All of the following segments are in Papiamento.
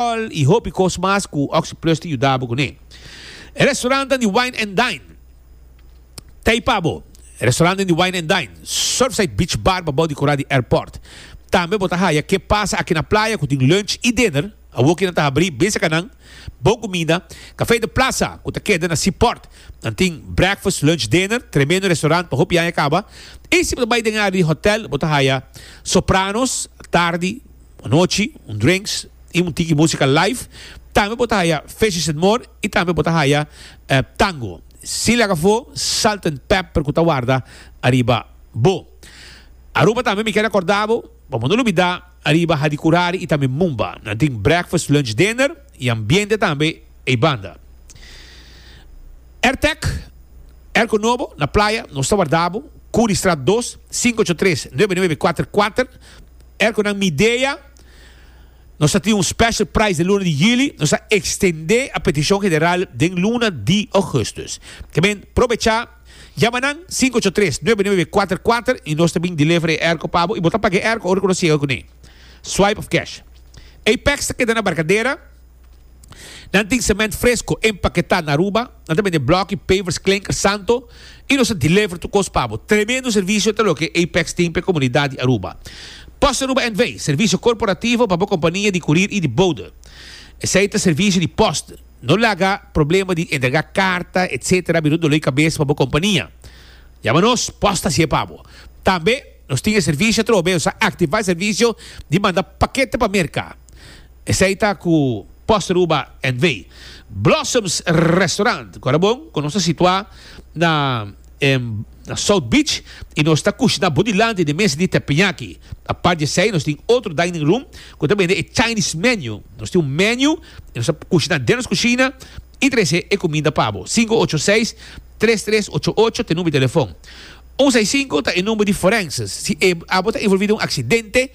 All y hopi cos mas cu Oxyplus ta yuda bo cu ne. E restaurantan di Wine and Dine ta ey pa bo. E restaurantan di Wine and Dine, Surfside Beach Bar pa bou di cora di airport. Tambe bo ta haya Que Pasa Aki na Playa cu tin lunch y dinner, awo kinan ta habri bin secanan, bon comida, Café de Plaza cu ta keda na Seaport, nan tin breakfast, lunch, dinner, tremendo restaurant pa hopi aña caba, y si bo ta bay den área di hotel bo ta haya Sopranos, tardi, Un nochi, un drinks y un tiki musica live. Tambe bo ta haya Fishes and More y tambe bo ta haya Tango. Sin laga afo, Salt and Pepper cu ta warda ariba bo. Aruba tambe mi keda corda bo, pa bo no lubida, ariba Hadi Curari y tambe Mumba. Nan tin breakfast, lunch, dinner y ambiente tambe ey banda. Airtec, airco nobo na playa, nos ta warda bo. Curi Straat dos, cinco ocho tres, nuebe nuebe cuater cuater. Er cu nan midea, nos ta tin un special price den luna di juli, nos ta extende a peticion general den luna di augustus. Tamen, probecha, yama nan sinku ocho tres, nuebe nuebe kuater kuater y nos ta bin deliver e airco pa bo y bo ta paga e airco ora cu nos yega cun'e. Swipe of cash. Apex ta keda na Barcadera. Nan tin semènt fresco empaketá na Aruba, nan ta bende blòki, pavers, klinker, santo i nos ta deliver tur kos pa bo. Tremendo servisio ta loke Apex tin pa e komunidat di Aruba. Post Aruba NV. Servisio korporativo pa bo kompania di kurir i di bode. Esei ta servisio di post. No laga problema di entregá karta etc. Bira un doló di kabes pa bo kompania. Yama nos, post ta hasi e pa bo. Tambe nos tin e servisio atrobe, nos a aktivá e servisio di manda pakete pa Merka. Esei ta ku Post Ruba NV. Blossoms Restaurant ku a ta bon ku nos ta situá na South Beach i nos ta kushná bo dilanti den mes di tepenyaki. Apart di esei nos tin otro dining room ku ta bende e Chinese menu. Nos tin un menu i nos ta kushná den nos kushina i trese e kuminda pa bo. Sinku ocho seis, tres tres ocho ocho ta e number di telefòn. Un seis sinku ta e number di Forenses si abo ta involví den un aksidente.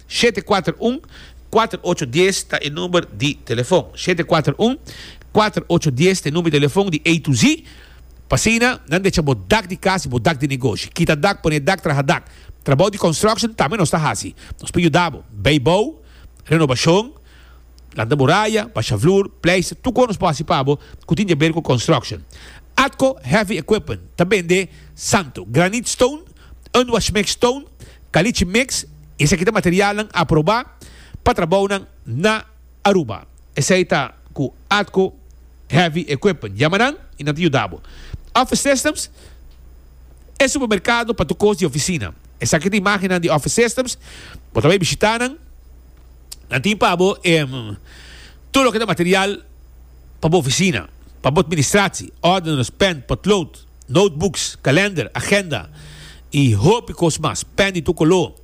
Shete kuater un, kuater ocho dies ta e number di telefon. Shete kuater un, kuater ocho dies ta e number di telefon di A to Z. Pa asina nan decha bo dak di kas i bo dak di negoshi. Kita dak, pone dak, traha dak. Trabou di construction tambe nos ta hasi. Nos por yuda bo. Bay bou, renobashon, lanta bo raya, basha vloer, pleister, tur kon nos por hasi pa bo ku tin di aber ku construction. Atco Heavy Equipment ta bende santo, granite stone, Un washmix toon, caliche mix, esaki ta materialnan aprobá pa trabounan na Aruba. Esei ta cu Atco Heavy Equipment. Yama nan y nan ta yuda bo. Office Systems, E supermercado pa tur cos di oficina. Esaki ta imagennan di Office Systems. Bo ta bay bishita nan. Nan tin pa bo e tur loke ta material pa bo oficina, pa bo administratie, ordeners, pen, potlood. notebooks, kalender, agenda y hopi cos mas, pen di tur color,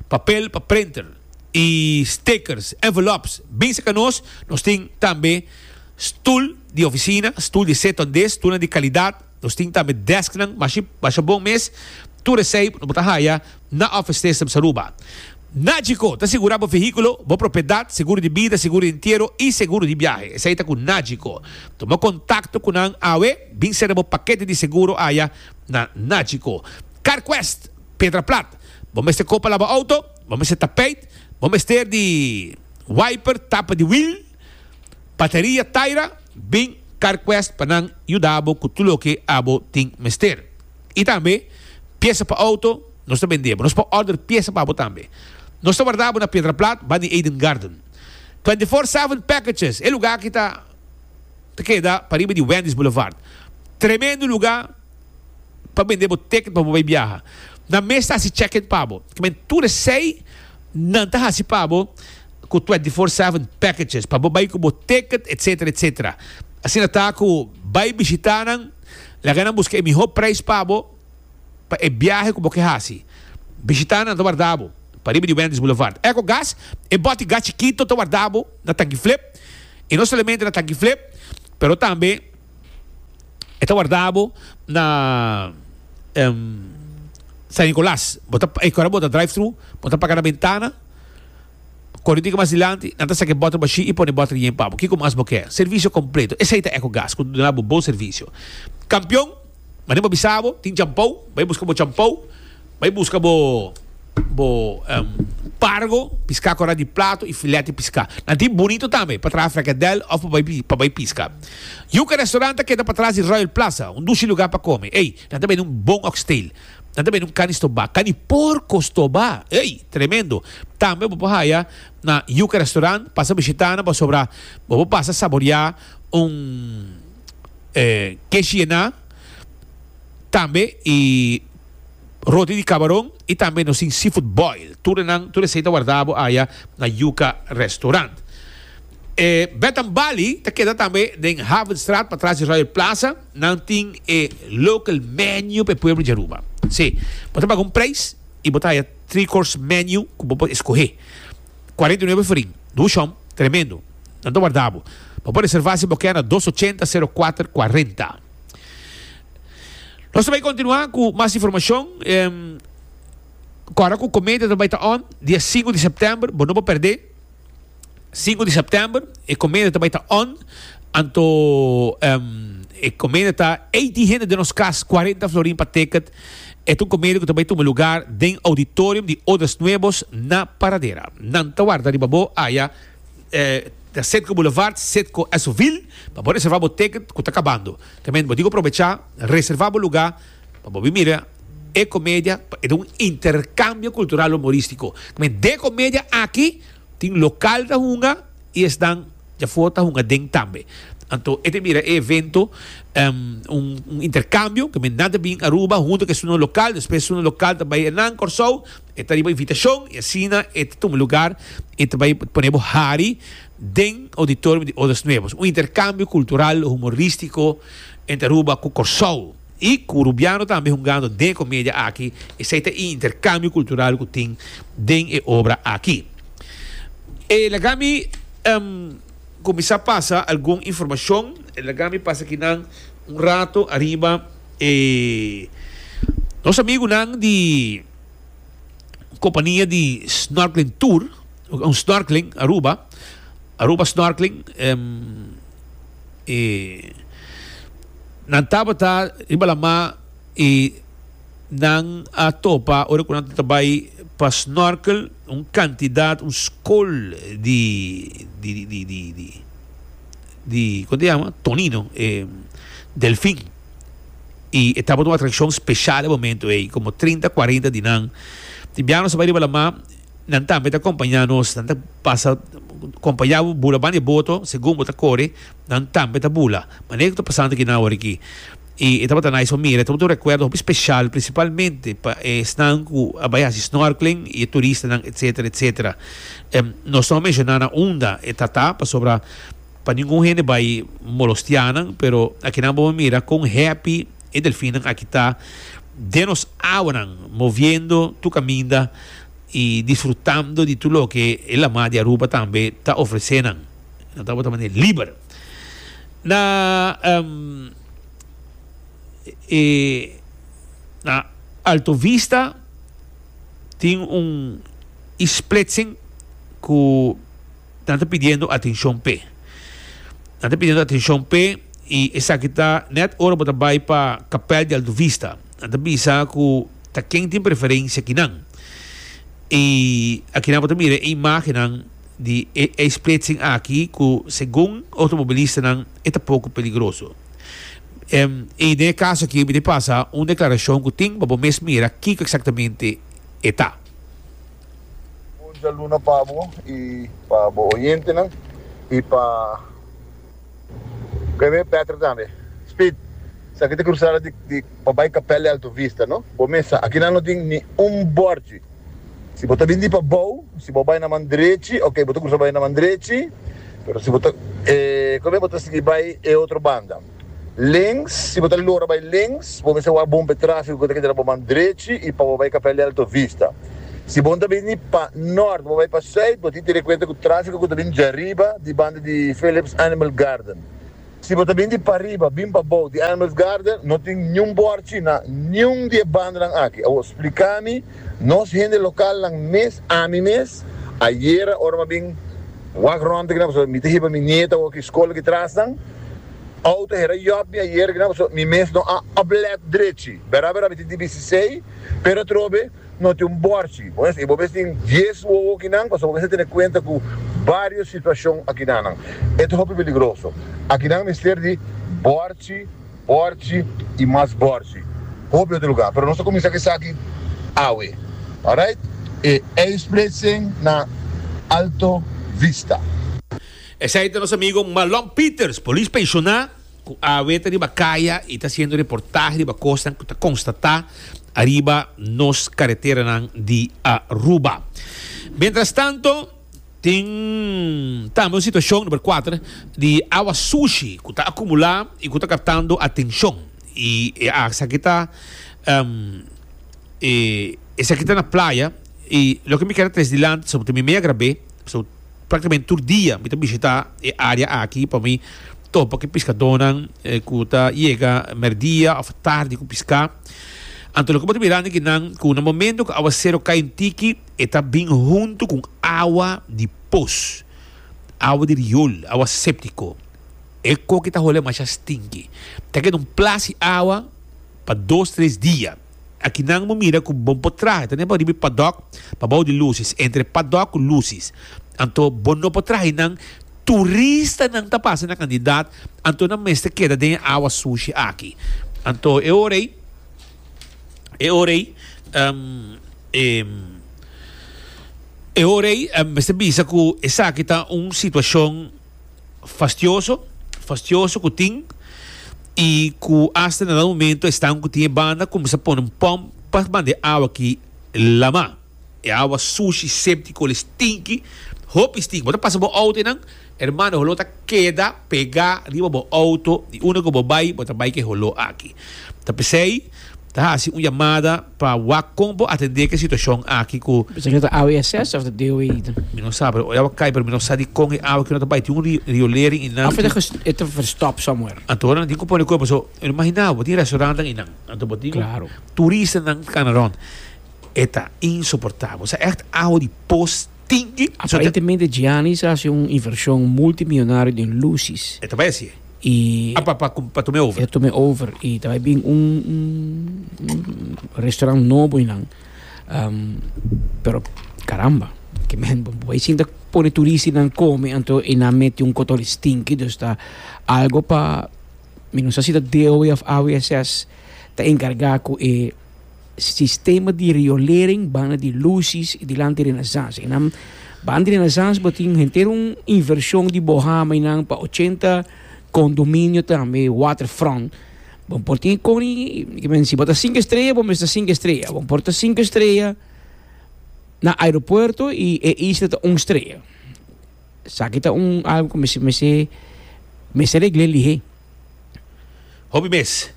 papel pa printer y stickers, envelopes. Bisa ca nos, nos tin tambe stoel di oficina, stoel di zit on dis, stoelnan di calidad, nos tin tambe desknan, mashi, masha bon mes, tur esey nos bo ta haya. Na Office Test Msa Aruba. Nagico ta sigura bo vehiculo, bo propiedad, seguro di bida, seguro di entiero y seguro di biahe. Esai ta cu Nagico. Tuma contacto cu nan awe. Bin sera bo paquete di seguro aya na Nagico. Carquest, Pedra Plat. Bo mester copa la bo auto, bo mester tapeit, bo mester di wiper, tapa di wiel, bateria, taira. Bin Carquest pa nan yuda bo cu tur loke abo tin mester. I tambe piesa pa outo, nos ta bendé bo. Nos por order piesa pa bo tambe. Nos ta warda bo na Piedra Plat, Bunny Aiden Garden. Twenty Four Seven Packages, e lugá aki ta ta keda pariba di Wendy's Boulevard. Tremendo lugá pa bendé bo ticket pa bo bai biaha. Nan mes ta hasi check in pa bo. Ta kmen tur esei nan ta hasi pa bo ku Twenty Four Seven Packages pa bo bai ku bo ticket, etcetera, etcetera. Asina ta ku bai bishitá nan. Laga nan buska e mihó preis pa bo pa e biahe ku bo ke hasi. Bishitá nan ta warda bo pariba di Wendy's Boulevard. EcoGas, e bòt di gas chikito ta warda bo na tanki flip, i no solamente na tanki flip pero tambe e ta warda bo na San Nicolas. Bo ta, ora bo ta drive-thru bo ta paga na bentana. Kore tin ke mas dilanti, nan ta saka e bòter bashí i pone bòter yen pa bo. Kiko mas bo ke? Servisio kompleto. Esei ta Ecogas, ku ta duna bo bon servisio. Kampion, manen bo a bisa bo, tin champou, bai buska bo champou, bai buska bo bo pargo, piská kòrá di plato i filèt di piská. Nan tin Bunito tambe, pa traha frekadèl òf pa bai pa bai piska. Yuka Restaurant ta keda patras di Royal Plaza, un dushi lugá pa kome. Ei, nan ta bende un bon oxtail. Nan ta bende un cani stobá, cani porco stobá, ey, tremendo. Tambe bo por haya na Yuca Restaurant, pasa bishitá nan pasobra bo por pasa saboreá un keshi ená tambe y roti di cabaron y tambe nos tin seafood boil. Tur enan, tur esey ta warda bo aya na Yuca Restaurant. Bed and Bali ta keda tambe den Havenstraat patras di Royal Plaza. Nan tin e local menu pa e pueblo di Aruba. Sí, bo ta paga un prijs y bo ta haya three course menu cu bo por escohe. Cuarenta y nuebe forin. Dushon tremendo. Nan ta warda bo. Bo por reserva si bo kier na dos ochenta sero kuater kuarenta. Nos ta bay continua cu mas informacion cu ora cu cometa ta bay ta on, dia sinku di september, bo no por perde. Sinku di September e comedia ta bai ta on anto e comedia ta eighty hende den nos cas cuarenta florin pa ticket e ta un comedia cu ta bai tuma lugar den auditorium di Odas Nuevos na Paradera nan ta warda riba bo aya den Citgo Boulevard Citgo Esoville pa bo reserva bo ticket cu ta cabando ta menti bo dico probecha reserva bo lugar Pa bo bin mira e comedia pa e ta un intercambio cultural humoristico. Kmen de comedia aki tin local ta hunga y esnan dja for ta hunga den tambe. Anto e ta mira e evento un intercambio, kmen nan ta bin Aruba hunto ke sunan local, despues sunan local ta bay nan Corsou, e ta riba invitacion y asina e ta tuma lugar y ta bay pone bo hari den auditorium di Odas Nuevas. Un intercambio cultural humoristico entre Aruba cu Corsou. I cu Rubiano tambe hungando den e comedia aki, esey ta e intercambio cultural cu tin den e obra aki. E laga mi cuminsa pasa algun informacion, e laga mi pasa aki nan un rato ariba e nos amigunan di compania di Snorkeling Tour. Un snorkeling Aruba, Aruba snorkeling e nan tabata riba la ma e nan a topa ora cu nan ta bai pa snorkel un cantidad un scol di di di di di di con ta llama tonino e delfin y e tabata un atraccion special e momento ey como trinta cuarenta di nan tin biaha nos a bai riba la ma Nan tambe ta kompañá nos, nan ta pasa kompañá bo, bula banda e boto segun bo ta kore, nan tambe ta bula manera ku ta pasando aki nan awor aki. I e tabata nice pa mira, e tabata un rekuerdo hopi spesial prinsipalmente pa esnan ku a bai hasi snorkeling i e turistanan etsetera etsetera. Nos no a menshoná nan unda e ta ta pasobra pa ningun hende bai molostiá nan, pero akinan bo a mira kon happy e delfinnan aki ta den nos awanan moviendo tur kaminda. y disfrutando di tur loke e La Mar di Aruba tambe ta ofrece nan. Nan ta bota manera liber. Na na Alto Vista tin un isplitsing cu nan ta pidiendo atencion p'e. Nan ta pidiendo atencion p'e y esaki ta net ora bo ta bay pa Capel di Alto Vista. Nan ta bisa cu. ta ken tin preferencia ki nan. Y aki nan bo ta mira e imagennan di e e splitsing aki cu segun automobilistanan e ta poco peligroso. Em, y den e caso aki mi tin pasa un declaracion cu tin pa bo mes mira kico exactamente e ta. Bon dialuna pa bo y pa bo oyentenan y pa. Preve Petro tambe. Speed, Esaki ta crusada di pa bai Capel Alto Vista no? Bo mes sa, aki nan no tin ni un borchi. Si bo ta bini di pa bou, si bo bai na man drechi, ok, bo ta crusa bai na man drechi, pero si bo ta e Come bo ta sigui bai e otro banda. Links, Si bo ta lora bai links, bo mes sa wak bon pa e trafico cu ta keda na bo man drechi y pa bo bai Capel Alto Vista. Si bo ta bini pa nort bo bai pa suit bo tin te rekuenta ku trafiko ku ta bini dja riba di banda di Phillips Animal Garden. Si bo ta bini di pariba bin pa bou di Animals Garden no tin niun bòrchi na niun di e bandanan aki. Awor splika mi nos hende lokalnan mes, ami mes ayera ora m'a bin wak rònt aki na pasobra mi ta hiba mi nieto awor ki skol aki trasnan outo hera yòp mi ayera aki na pasobra mi mes no a oplet drechi. Bera bera mi tin di bisisei. Pero atrobe no tin un bòrchi. Por eso, i bo mes tin dies wowo akinan, pasobra bo mes a tene kuenta ku barios situashon akinanan. E ta hopi peligroso. Akinan mester di bòrchi, bòrchi i mas bòrchi. Hopi otro lugá. Pero nos ta kuminsá ku esaki awe. Alright? E eispretsing na Alto Vista. Esei ta nos amigo Malon Pieters, polis penshoná. cu a weta riba caya y ta haciendo reportahe riba cosnan cu ta constata ariba nos careteranan di Aruba. Mientrastanto, tin tambe un situacion, number cuater, di awa sushi cu ta acumula y cu ta captando atencion. Y esaki ta, um, e esaki ta na playa y loke mi keda tres dilanti, pasobra ta mi mei a grab'e, pasobra. Práktikamente tur dia mi ta bishitá e área aki pa mi topa ku e piskadónan ku ta yega mèrdia òf tardi ku piská. Anto loke bo ta mirando ki nan ku na momentu ku áwasero kai un tiki e ta bin huntu ku un awa di pos, awa di riol, awa séptiko. E koki ta hol'é masha stinki. Ta keda un plas di awa pa dos tres dia. Aki nan bo mira ku bon por traha ta nepa riba e padòk pa bou di lusis, entre padòk ku lusis. Anto bo no por traha einan. Turistanan ta pasa na Kandidat, anto nan mester keda den e awa sushi aki. Anto e ora ei, e ora ei, e ora ei mester bisa ku esaki ta un situashon. fastioso fastioso ku tin i ku asta na dado momento e stanku ku tin e banda kuminsá pone un pòmp pa banda e awa ki lamá e awa sushi séptiko el stinki hopi stinki bo ta pasa bo outo einan ermano e holó ta keda pegá riba bo outo di unda ku bo bai bo ta bai ku e holó aki ta p'esei. Ta hasi un yamada pa wak kon bo atendé ku e situashon aki ku. Mi pensá ku ta awe SS òf ta DOE i ta. Mi no sa, pero oi awa kai, pero mi no sa di kon e awa ku no ta bai. Tin un riolering i nan. Òf e ta e ta verstòp somewhere. Anto nan tin ku pone kuerpo so e no imaginá bo tin restaurannan i nan anto bo tin. Klaro. Turistanan kanaron e ta insoportabel. Sa ègt awa di pos. tin di aprende. Aparentemente Gianni sa haci un inversion multimillonario den lusis. E ta bai haci e. Y. Ah pa pa pa tome over. E tome over y ta bai bin un restaurant nobo eynan pero caramba ke men bo bai sinta pone turista eynan come anto eynan mete un kotol stinky dus ta algo pa mi no sa si ta DOF ta encarga cu e. sistema di riolering banda di lusis y dilanti di Renaissance. Enan banda di Renaissance bo tin henter un inversion di bohama y nan pa ochenta condominio tambe waterfront. Bo por tin con y kimen si bo ta cinco estrella bo mester ta cinco estrella. Bo por ta cinco estrella na aeropuerto y e isla ta un estrella. Saki ta un algo ku mester mester regle lihé. Hopi mes.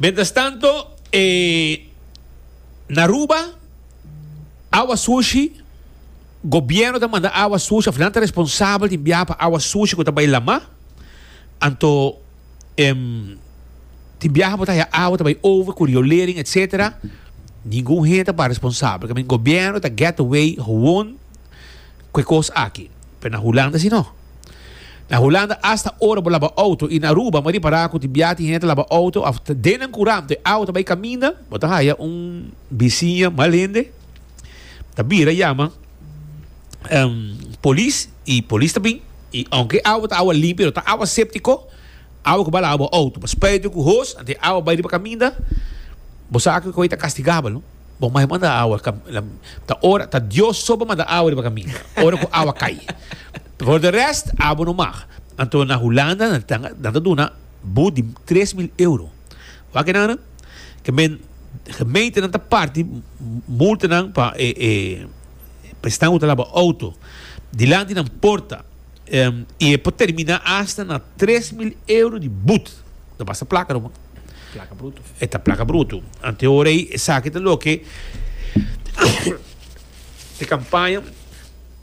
Mentras tanto e n'Aruba awa sushi gobierno ta manda awa sushi of nan ta responsabel di biaha pa awa sushi ku ta bai lama anto em tin biaha bo ta haña awa ta bai over ku riolering etc ningun hende ta ba responsabel gobierno ta get away howon. ku e kos aki. Pero na Hulanda si no. Na Hulanda asta ora bo laba outo, i na Aruba bo a ripará ku tin biaha tin hende ta laba outo òf den nan kuran e awa ta bai kaminda, bo ta haya un bisiña mal hende, ta bira yama polis, i polis ta bin, i ounke e awa ta awa limpi pero ta awa séptiko, awa ku bai laba bo outo. Spijt di ku hos anto e awa bai riba kaminda, bo sa ku e ta kastigabel no. Bo mai manda awa ta ora ta Dios so bo manda awa riba kaminda ora ku awa kai for de rest abo no mag anto na Hulanda nan ta nan ta duna bu di tres mil euro wak e nan ke men gemeente nan ta parti multa nan pa e e prestan ku ta laba auto dilanti nan porta i e por termina asta na tres mil euro di but no basta plaka no E ta plaka brutu. Anteora ei esaki ta loke di kampaña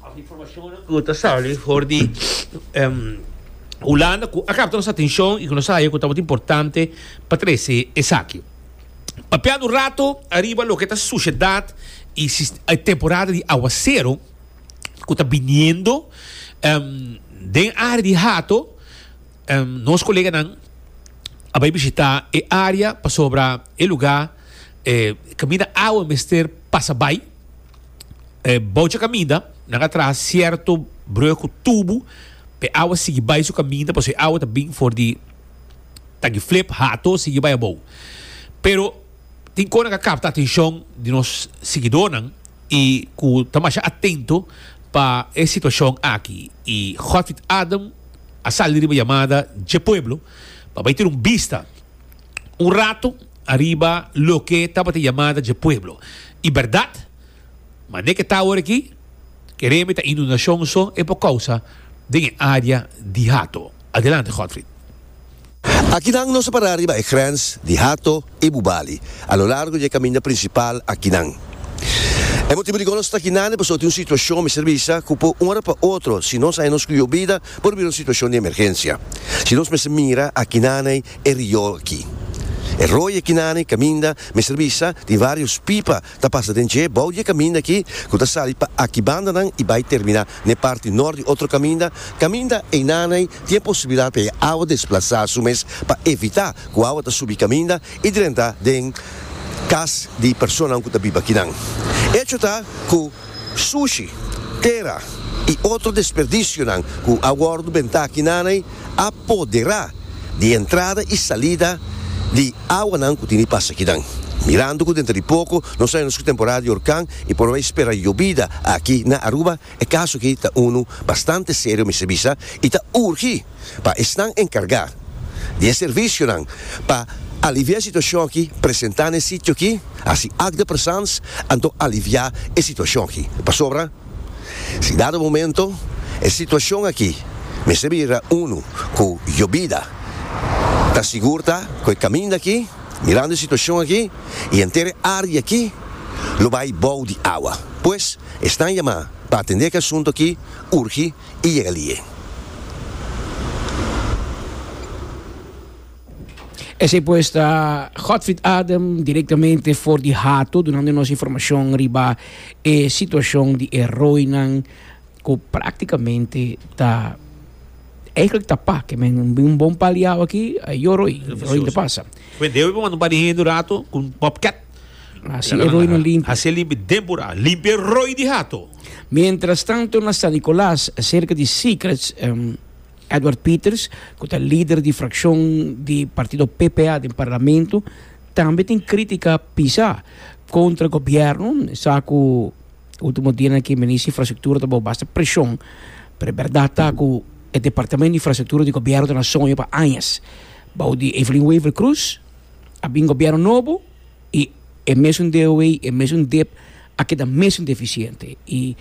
òf informashonnan ku ta sali for di Hulanda ku a kapta nos atenshon i ku nos a haña ku tabata importante pa trese esaki. Papiá un rato ariba loke ta sushedat e e temporada di awasero ku ta biniendo den área di Hato. Nos koleganan a bai bishitá e área pasobra e lugá kaminda awa mester pasa bai. Bou dje kaminda nan a traha sierto brùg ku tubu pa e awa sigui bai su kaminda pasobra e awa ta bini for di tagiflip, hato, sigui bai abou. Pero. Tin kos nan ku a kapta atenshon di nos sigidónan i ku ta masha atento pa e situashon aki i Godfrid Adam a sali riba yamada dje pueblo pa bai tene un bista un rato ariba loke tabata yamada dje pueblo. I bèrdat manera ke ta awor aki, ke rembe ta inundashon so e por kousa den e área di Hato. Adelante Godfried. Aki nan nos a pará riba e grens di Hato i Bubali, a lo largo di e kaminda prinsipal akinan. E motibu di kon nos ta aki nande pasobra tin un situashon, mester bisa, ku por un ora pa otro, si nos haña nos kuyo bida, por bira un situashon di emergensia. Si nos mester mira aki nande e riol aki. E roi aki nande kaminda, mester bisa, tin varios pipa Ta pasa den dje bou di e kaminda akí ku ta sali pa aki bandanan i bai terminá n'e parti nort di otro kaminda. Kaminda einan'ei tin e posibilidat pa e awa desplasá su mes pa evitá ku awa ta subi kaminda i drentá den kas di personanan ku ta biba kinan. Echo ta ku. Sushi, tera y otro desperdicionan cu a wordo benta aki nanay a podera di entrada y salida di awanan cu tin di pasa akinan. Mirando cu denter di poco nos ta entra su temporada di horcan y por bay spera yobida aki na Aruba, e caso aki ta uno bastante serio mester bisa y ta urgi. pa esnan encarga di e servicionan pa alivia e situacion aki presenta na e sitio aki, haci act de presence, anto alivia e situacion aki. Pasobra si dado momento e situacion aki mester bira uno cu yo bida ta sigur ta cu e caminda aki, mirando e situacion aki y henter e area aki lo bay bou di awa. Pues esnan yama pa atende e asunto aki urgi i yega li'é. Esei pues ta Godfried Adem direktamente for di Hato dunando nos informashon riba e situashon di e roinan ku praktikamente ta eihklik ta pa ke men bin un bon paliau aki, a e yo roi, roi Depaza. Kume debe bo manda un par di hende un rato ku un bobcat. Hasi e limpi den pura. Limpi e roi di hato. Mientrastanto na San Nicolas, serka di Secrets, Edward Peters, ku ta lider di frakshon di partido PPA den parlamento, tambe tin krítika pisá kontra gobièrnu. E sa ku último dianan aki e minister di Infrastruktura ta bao basta preshon, pero e bèrdat ta ku e departamento di Infrastruktura di gobièrnu ta na soño pa añas bao di Evelyn Wever-Croes. a bin gobierno nobo y e mesun DOW y e mesun dip a keda mesun deficiente y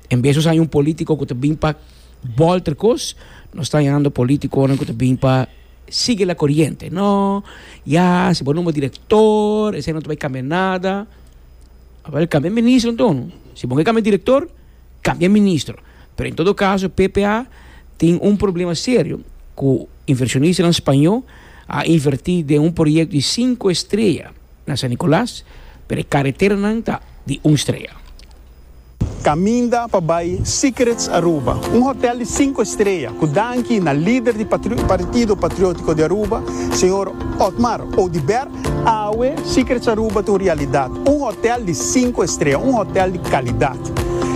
en vez nos haña un politico cu ta bin pa bolter cos nos ta hañando politiconan cu ta bin pa sigui la coriente no ya si bo nomba director esey no ta bay cambia nada aver cambia e ministronan tono si bo ke cambia e director Cambia ministro. Pero en todo caso ppa tin un problema serio cu inversionistanan spaño a inverti den un proyecto di cinco estrella na San Nicolas pero e carreteranan ta di un estrella. Caminda pa bai Secrets Aruba, un hotel di cinco estrella cu danki na lider di Partido Patriotico di Aruba, señor Otmar Oduber, Awe, Secrets Aruba ta un realidat, un hotel di sinku estrea, un hotel di kalidat.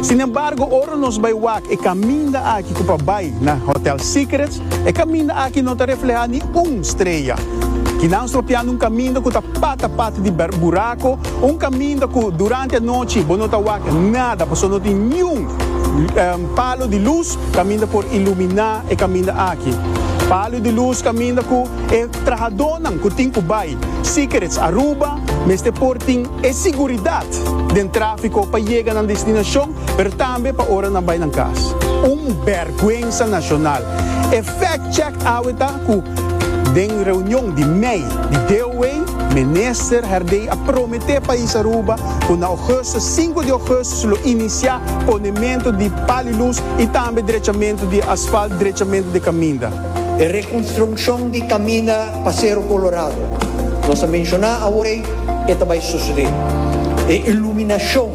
Sin embargo, ora nos bai wak e kaminda aki ku pa bai na Hotel Secrets, e kaminda aki no ta reflehá ni un strea. Kinan stropiando un kaminda ku ta pata pata di burako, un kaminda ku durante anochi bo no ta wak nada pasobra no tin niun palo di lus kaminda por iluminá e kaminda aki. Palo di lus kaminda ku e Trahadónan ku tin ku bai Secrets Aruba mester por tin e siguridat den tráfiko pa yega nan destinashon, pero tambe pa ora nan bai nan kas. Un bèrgwensa nashonal! E fact check awe ta ku den reunion di mei di DOA, Minister Herdey a prometé pais Aruba ku na Ougustus, sinku di Ougustus, lo inisiá ponementu di palilus i tambe drechamentu di asfalt, drechamentu di kaminda. E reconstruccion di caminda pa Cerro Colorado, nos a menciona awey, e ta bay sucede. E iluminacion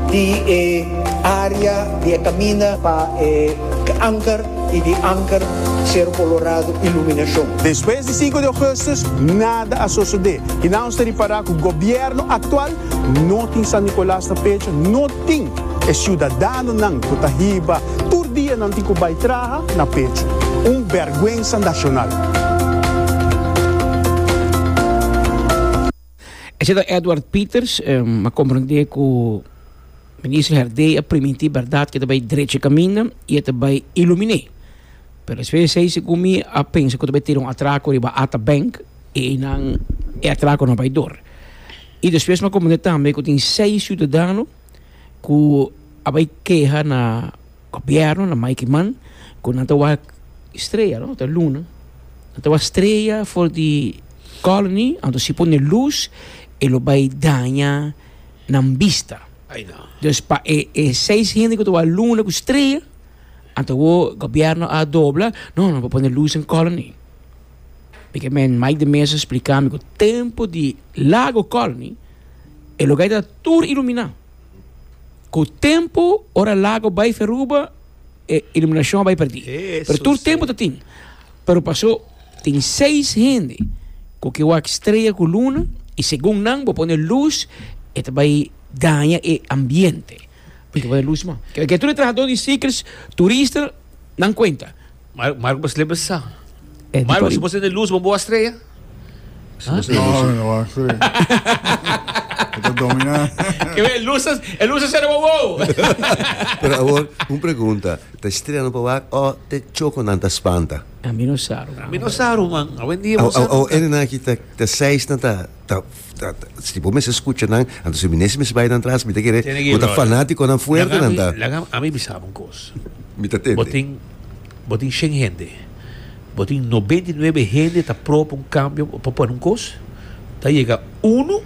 di e area di e caminda pa e Anker y di Anker Cerro Colorado iluminacion. Despues di cinco di augustus nada a sucede. Kina nos ta ripara cu gobierno actual no tin San Nicolas ta pecha, no. tin e siudadanonan ku ta hiba tur dia nan tin ku bai traha na pechu. Un bèrgwensa nashonal. Esei ta Edward Pieters, a komprendé ku Minister Herdé a primintí bèrdat ku e ta bai drechi e kaminda i e ta bai iluminé. Pero despues di esei segun mi a pensa ku ta bai tira un atrako riba Atabank i einan e atrako no a bai dor. I despues mi a comprende tambe cu tin seis ciudadano cu a bay keha na gobierno, na Mike Iman, cu nan ta wak strea, no ta luna, nan ta wak strea for di colony, anto si pone luz e lo bay daña nan bista. Ay no. Dus pa e e seis hende cu ta wak luna cu strea, anto awo gobierno a dobla, no, nan por pone luz den colony. P'ekemen Mike de Mesa spliká mi ku tempu di Lago Colony e lugá ta tur iluminá. Ku tempu ora lago bai feruba e iluminashon a bai pèrdí. Pero tur tempu ta tin. Pero pasó tin seis hende ku ke wak strea ku luna i segun nan bo pone lus e ta bai daña e ambiente. Ke tur e trahadó di Seekers turista nan kuenta. Marco bo slepe sa. Marco si bo tende lus bo bo a strea? No mi no bo a strea. Bo ta domi na. E lus e lus a sera bo bo. Pero awor un pregunta ta strea nan pa wak o te choko nan ta spanta? Mi no sa. Mi no sa Ruman. Awendia bo sa. Awor ene nan aki ta seis nan ta. ta ta si bo mester scucha nan anto si mi nes mester bay nan tras mi ta kere bo ta fanaticonan fuerte nan ta. Laga ami laga ami bisa bo un cos mi ta tende bo tin bo tin shen hende bo tin noventa y nuebe hende ta pro pa un cambio o pa pone un cos ta yega uno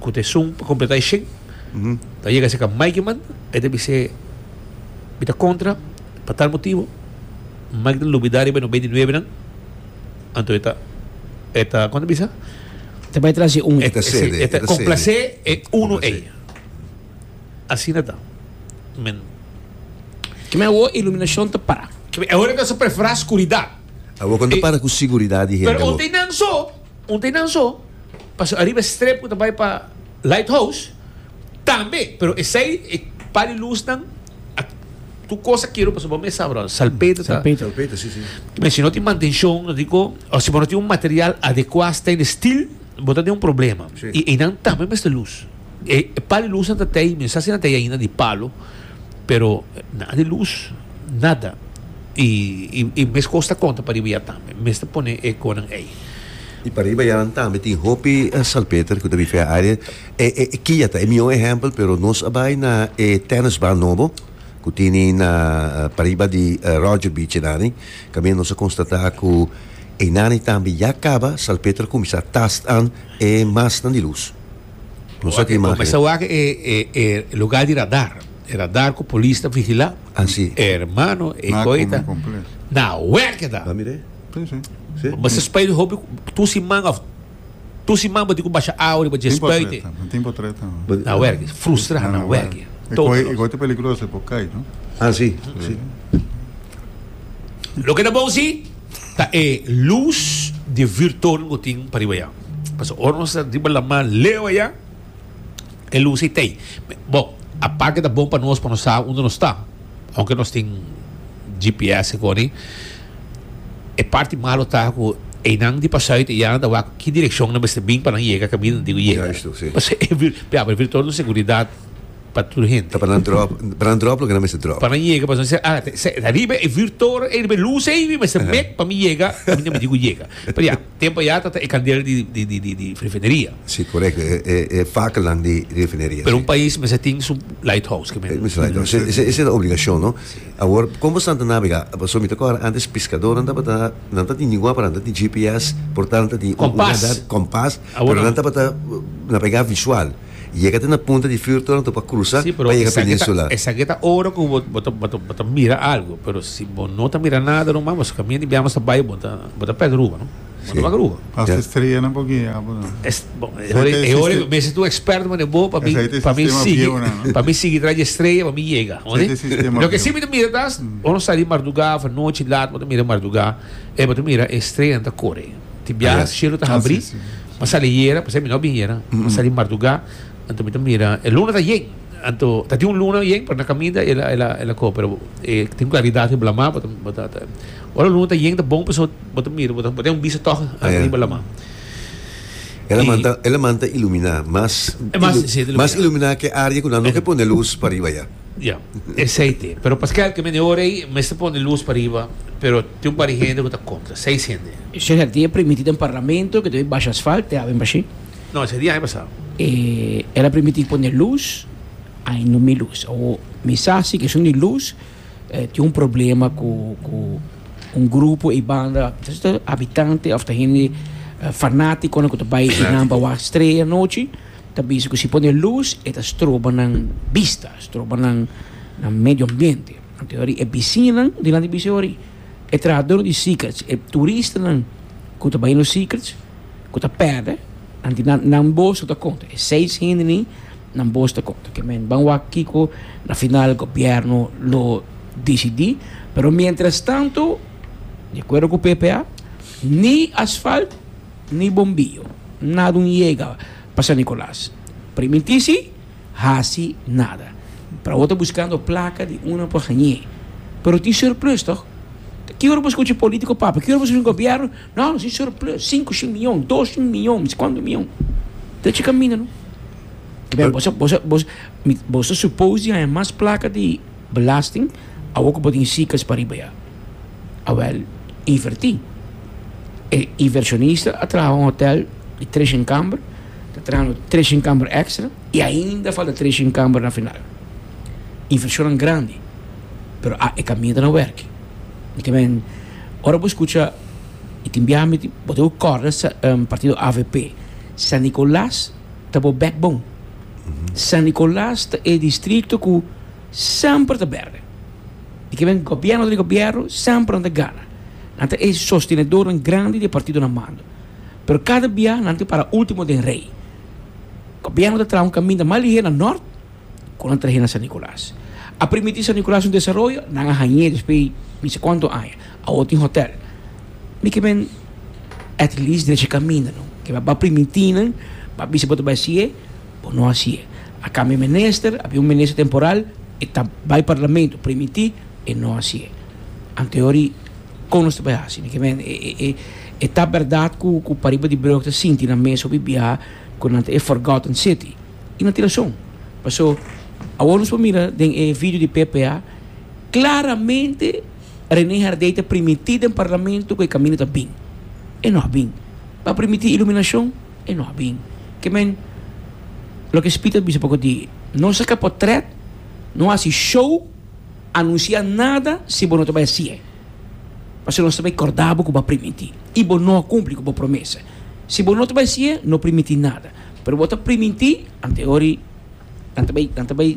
cu ta esun pa completa e shen ta yega aseca may ki manda e ta bis'e mi ta contra pa tal motibo may ki ta lubida riba e noventa y nuebenan. Anto e ta, e ta, kon ta bisa? Ta bai tras di un. E ta sede, e ta komplasé e unu ei. Asina ta. Men. Kibè awo e iluminashon ta para. Kibè e ora nan sa preferá skuridat. Awo kon ta para ku siguridat di hende awo. Pero un tei nan so, un tei nan so, paso ariba e strep ku ta bai pa Lighthouse. Tambe, pero esei e par di lusnan a tur cos a kero pasobra bo mes sa brother, salpeter ta, Salpeter. Salpeter, si, si. men si no tin mantencion no tin con, o si bo no tin un material adecua stay in the still bo ta den un problema Si. y einan tambe mester luz. E par di lusnan ta tei, mi no sa si nan tei ainda di palo, pero nan a di luz nada y y y mes cos ta conta pariba ya tambe, mester pone e conan ei. Y pariba ya nan tambe tin hopi salpeter cu ta bifia area. E kia ta e mihó ehèmpel, pero nos a bai na e tènisban nobo ku tene na pariba di Roger Beach einani, kaminda nos a konstatá ku einani tambe ya kaba, Salpeter a kuminsá tastá e masnan di lus. Nos a tin imágen. Mester wak e lugá di radar, e radar ku polis ta vigilá. Así. Hermano, e koi ta na wèkeda. Mester spui hopi, tu siman òf Tur siman bo tin cu basha awa riba dje spuite. No tin pa treta. Na werki. Frustra na werki. E goi ta peligroso, e por cai, no? Ah, si. Loke ta bon si, ta e luz di virton bo tin pa riba ya. Pasobra ora nos ta riba laman leu aya. e luz ei t'ei. Bo, aparte ta bon pa nos, pa nos sa unda nos ta, aunke nos tin GPS e koni, e parti malo ta ku einan di pasá uit ei ya nan ta wak ki direkshon nan mester bin pa nan yega kaminda nan tin ku yega. Justo, si. Pasobra e vir, ya, e virtual un seguridat pa tur hende. Ta pa nan dròp, pa nan dròp loke nan mester dròp. Pa nan yega, pasobra nan ser, ah, ta, ta riba e virtual ei, riba e luz ei, mi mester met pa mi yega kaminda mi tin ku yega. Pero ya. Tempo ya ta ta e kaldera di di refineria. Si korekto e fakelnan di refineria. Pero un pais mester tin su lighthouse ke men. Ese ta obligashon no. Awor kon boso ta nabega paso mi ta kòrda antes piskadó nan tabata nan ta tin dingua pero nan ta tin GPS por tanto nan ta tin un radar kompas pero nan tabata nabega visual. Yega ta na punta di fur tornan topa crusa pa yega peninsula. Esaki ta ora cu bo ta mira algo pero si bo no ta mira nada ruman bo camina di biaha bo ta bay bo ta perde rumbo no bo ta wak rumbo. Hasta estreanan por guia abo no. E hora cu mester ta un experto mane bo pa mi sigui pa mi sigui tras di estrella pa mi yega oye. Loke si mi ta mira ta bo no sali marduga of anochi laat bo ta mira marduga y bo ta mira e estreanan ta core. Ti bia yes. cielo ta habri. Ah, sí, sí. Ma sali yera, pues mi no bin yera. Mm -hmm. Sali marduga, anto mi ta mira, el luna ta yen. Anto, ta tin un luna yen, pero na caminda el, el, el, el ko, pero eh, tin claridad he blama, bota, bota, ta. Ora luna ta yen, ta bon, pues bota mira, bota, bota un bisa toch, ah, yeah. blama. Ela y, manta, ela manta ilumina, mas, eh, mas, ilu, sí, ilumina. mas ilumina que área que no que pone luz para arriba ya. Yeah. Ja, aceite. Pero Pascal, que me neorei, me se pone luz para arriba, pero Tin un par di hende ku ta kontra, seis hende. Eshe herdia primití den parlamento, ke debe basha asfalt, te haben bashí. No, eshe di aña pasá. E el a primití pone lus, ai no mi lus. Awo, mi sa si keshon di lus tin un problema ku ku un grupo ei banda, ta ser habitante òf ta hende fanátikonan ku ta bai di nan pa wak strea anochi, ta bisa ku si pone lus e ta stroba nan bista, stroba nan nan medio ambiente. Anteori e bisiñanan di landi bisiñaori, e trahador di Secrets, e turistanan ku ta bai no Secrets ku ta pèrdè, anti nan nan boso ta konta, e seis hende ni nan boso ta konta. Ke men ban wak kiko na final gobièrnu lo disidí, pero miéntras tantu, di akuerdo ku PPA, ni asfalt ni bombio nada un yega pa San Nikolas. Priminti si. hasi nada. Para bo ta buskando plaka di una pa hañ'é. Pero tin surplus tòg. Ki ora bo skucha un polítiko papia? Ki ora bo skucha un gobièrnu? No, nos tin surplus, sinku shin mion, dos shin mion, mi si kuantu mion. Ta tjika mi nan. Pero bo sa, bo sa, bo sa, bo ta suppose di haña mas plaka di belasting awor ku bo tin sikas pariba ya. Awel, invertí. E inversionista a traha un hotel di treshon kamber, ta trahando treshon kamber èkstra i ainda falta treshon kamber na final. Invershonnan grandi, pero a e kaminda na wèrki. Mi ta biaha, ora bo skucha i tin biaha mi tin, bo ta oir kòrda sa, partido avp. San Nicolas ta bo backbone. San Nicolas ta e distrito ku semper ta bèrdè. Di ke men gobièrnu ta di gobièrnu, semper nan ta gana. Nan ta e sostenedornan grandi di e partidonan mando. Pero kada bia nan tin para último den rei. Gobièrnu ta traha un kaminda mas lihé na nòrt ku nan trah'é na San Nikolas. A permití San Nikolas un desaroyo, nan a hañ'é despues di no se kuantu aña. Awor tin hotèl. Mi ke men at least drechi kaminda, no? Ke mi a bai primintí nan, mi a bisa bo ta bai hasié. Bo no hasi e. A cambia minister, a bin un minister temporal, e ta bay parlamento, primiti e no hasi e. Anteori con nos ta bay hasi? Niki men e e e e ta berdad cu cu pariba di breu ta sinti na mesa hopi biaha cu nan ta e forgotten city. Y nan tin razon. Paso awor nos por mira den e video di PPA claramente Rene Herdey ta primiti den parlamento cu e camino ta bin. E no a bin. Bo a primiti iluminacion? e no a bin. Ke men, loke Spit a bisa poko di, No saka potret, no hasi show, anunsia nada si bo no ta bai hasi'e. Pasobra nos ta bai korda bo ku bo a primintí i bo no a kumpli ku bo promesa. Si bo no ta bai hasi'e, no primintí nada. Pero bo ta primintí, anteori nan ta bai, nan ta bai.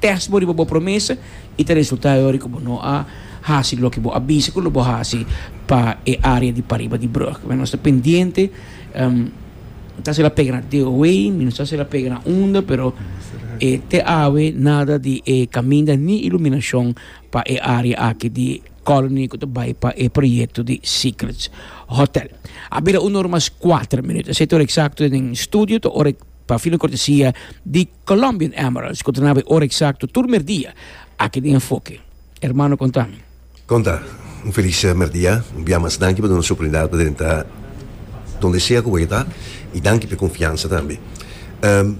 test bo riba bo promesa y ta resulta e ora cu bo no a haci loke bo a bisa cu lo bo haci pa e area di pariba di brug. Nos ta pendiente, no ta haci la pega na DOW, ni no ta haci la pega na unda, pero te awe nada di e caminda ni iluminacion pa e area aki di Colony cu ta bay pa e proyecto di Secrets Hotel. A bira un ora mas cuater minuut, esey ta ora exacto den studio, ta ora pa filo cortesia di. Colombian Emeralds cu trenaba e ora exacto tur merdia aki den enfoke. Hermano conta mi. Conta. Un feliz merdia. Un bia mas danki pa duna nos oportunidad pa drenta donde sea cu boye ta y danki p'e confiansa tambe.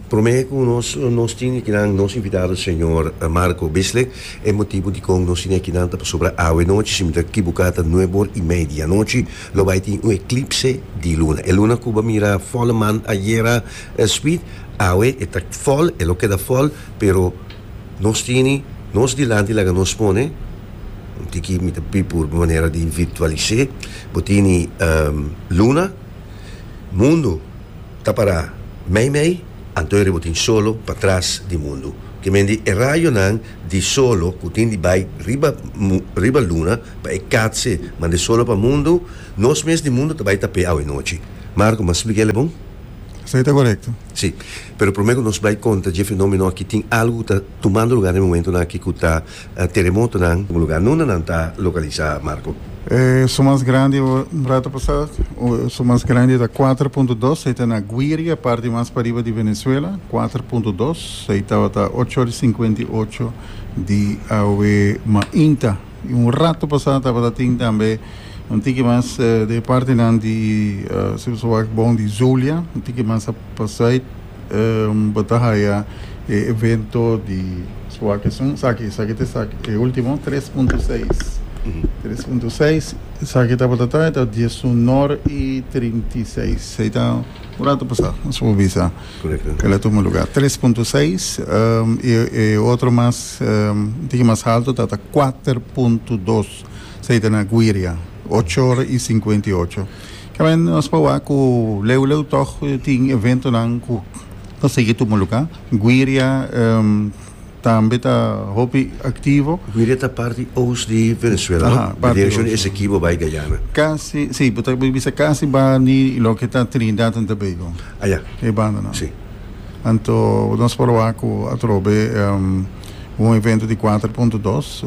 Prome cu nos nos tin ekinan nos invitado señor Marco Bissley. E motibo dicon nos tin ekinan ta pasobra awenochi si mi ta kibuca ta nuebe or y media anochi lo bay tin un eclipse di luna. E luna cu bo a mira folle maan ayera. El sweet awe e ta fòl e lo keda fòl pero nos tini nos dilanti laga nos pone un tiki mi ta pi por manera di virtualisé bo tini luna mundu ta pará mei mei anto riba bo tin solo pa tras di mundu ke mendi e rayonan di solo ku tin di bai riba riba luna pa e katse manda e solo pa mundu nos mes di mundu ta bai tapé awe nochi Marco m'a spliká el e bon? Esei ta korekto? Sí. Pero promé ku nos bai konta dje fenómeno akí tin algu ku ta tumando lugá den momentonan akí ku ta teremotonan. Kon lugá nunde nan ta lokalisá, Marco? E su mas grandi, un rato pasá su mas grandi ta kuater punto dos, ei ta na Guiria, parti mas pariba di Venezuela, kuater punto dos. Ei tabata ocho ora i sinkuenta i ocho di awe mainta. Y un rato pasá tabata tin tambe un tiki mas di e partenan di su su wak bon di Zulia, un tiki mas a pasait bo ta haya e evento di su wak esun. Esaki, esaki ta esaki, e ultimo tres punto seis, tres punto seis, esaki tabata ta e ta diesunor y trinta y seis. Ei ta un rato pasá nos por bisa. Kende a tuma lugá tres punto seis i e otro mas un tiki mas haltu ta ta kuater punto dos esei ta na Guiria ocho ora i sinkuenta i ocho kèmen nos por wak ku leu leu tòg tin eventonan ku ta sigui tuma lugá Guiria. tambe ta hopi aktivo. Guira ta parti oos di Venezuela, no? Aha, parti oos. Direkshon di Esekibo bai Guyana. Kasi, si, bo ta bisa kasi bani loke ta Trinidad and Tobago. Ah, ya. E bandanan. Si. Anto nos por wak ku atrobe un evento di kuater punto dos,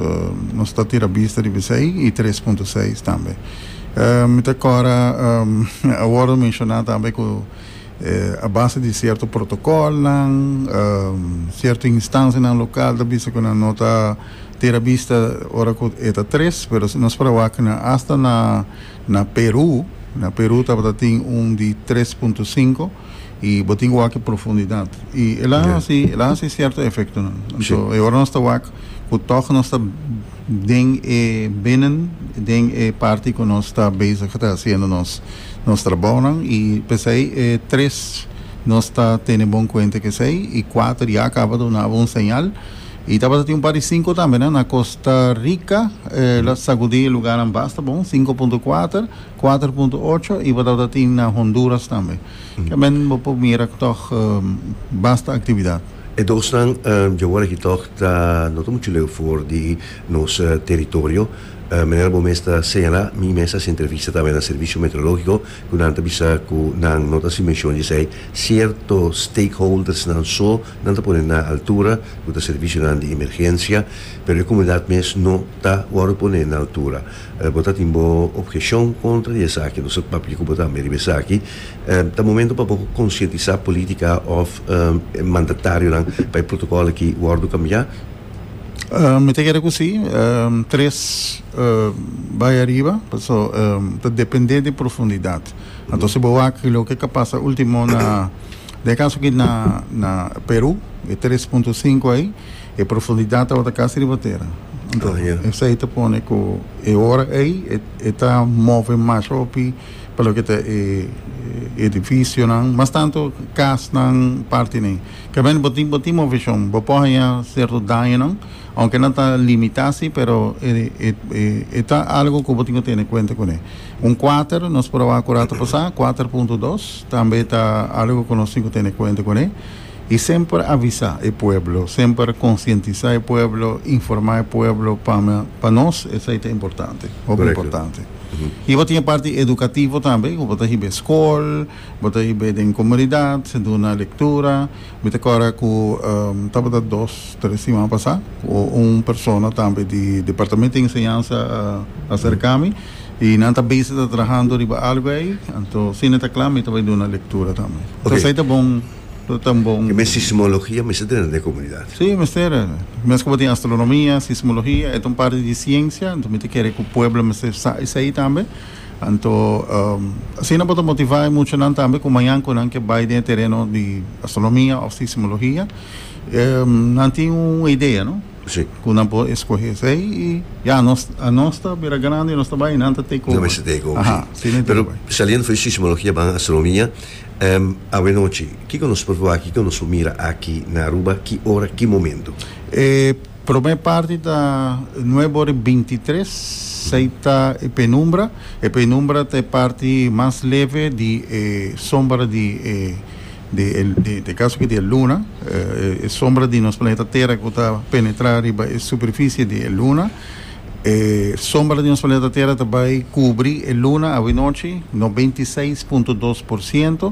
nos ta tira bista riba esei, i tres punto seis tambe. Mi ta kora, awor lo menshoná tambe ku. A base di cierto protocolnan, cierto instancianan local ta bisa cu nan no ta tira bista ora cu e ta tres, pero si nos para wak na hasta na na Peru, na Peru tabata tin un di tres punto cinco y bo tin cu wak e profundidad y el a haci el a haci cierto efectonan. Anto e ora nos ta wak cu toch nos ta. Den e binnen den e parti ku nos ta bezig ta hasiendo nos nos trabounan i p'esei e tres nos ta tene bon kuenta ku esei i kuater ya a kaba duna abo un señal i tabata tin un par di sinku tambe na na Kosta Rika e lo sagudi e lugarnan basta bon sinku punto kuater kuater punto ocho i bo tabata tin na Honduras tambe. Ke men bo por mira ku tòg basta aktividat. E dosnan djawòl aki tòg ta no ta muchu leu for di nos teritorio. Manera bo mes ta señalá, mi mes hasi entrevista tambe na Servicio Meteorológico ku nan ta bisa ku nan no ta hasi menshon di esei sierto stakeholdersnan so, nan ta pone na altura, ku ta servisionan di emergensia, pero e komunidat mes no ta wòrdu pone na altura. Bo ta tin bo obheccion contra di esaki, entonces bo ta papia cu bo tambe riba esaki. Ta momento pa bo concientisa politica of mandatarionan pa e protocolo aki wordo cambia? Mi ta kere cu si. Tres bay ariba, paso ta depende di profundidad. Anto si bo wak loke a pasa ultimo na den e caso aki na Peru, e tres punto sinku ay. E profundidat tabata casi riba tera. Anto, esai ta pone cu e ora ei e ta move mas hopi pa loke ta e edificionan, mas tanto casnan, partenen. Caminda bo tin, bo tin movecion, bo por haya cierto dañonan, aunke nan ta limita si, pero e ta algo cu bo tin cu tene cuenta cune. Un quater, nos proba cu rato pasa, quater punto dos, tambe ta algo cu nos tin cu tene cuenta cune. I semper avisa e pueblo, semper konsientisa e pueblo, informa e pueblo pa pa nos esei ta importante, hopi importante. I bo tin e parti edukativo tambe ku bo ta hib'e skol, bo ta hib'e den komunidat, duna lektura, mi ta kòrda ku tabata dos, tres siman pasá ku un persona tambe di departamento di enseñansa a aserka mi i nan ta bese ta trahando riba algu ei, anto si nan ta kla mi ta bai duna lektura tambe. Esei ta bon. So ta bon. Ke mes sismologia mester drenta den e komunidat? Si, mester. Mes ku bo tin astronomia, sismologia, e ta un parti di siensia, anto mi ta kere ku pueblo mester sa esei tambe. Anto, asina bo ta motivá e muchanan tambe ku mañan ku nan ke bai den e tereno di astronomia òf sismologia, nan tin un idea, no? Si. Ku nan por eskohe esei i ya, anos, anos ta bira grandi, anos ta bai, nan ta teka oba. Nan mester teka oba, si. Aha, si nan teka oba. Pero saliendo for di sismologia, a ban astronomia. Awenochi, kiko nos por wak, kiko nos por mira aki na Aruba, ki ora, ki momento? E prome parti ta nuebe ora i binti tres, sei ta e penumbra, e penumbra ta e parti mas leve di e sombra di e di e di te kaso aki di e luna, e sombra di nos planeta tera ku ta penetrá riba e superfisie di e luna. E sombra di nos planeta Tera ta bai kubri e luna awe nochi, no binti seis punto dos por siento.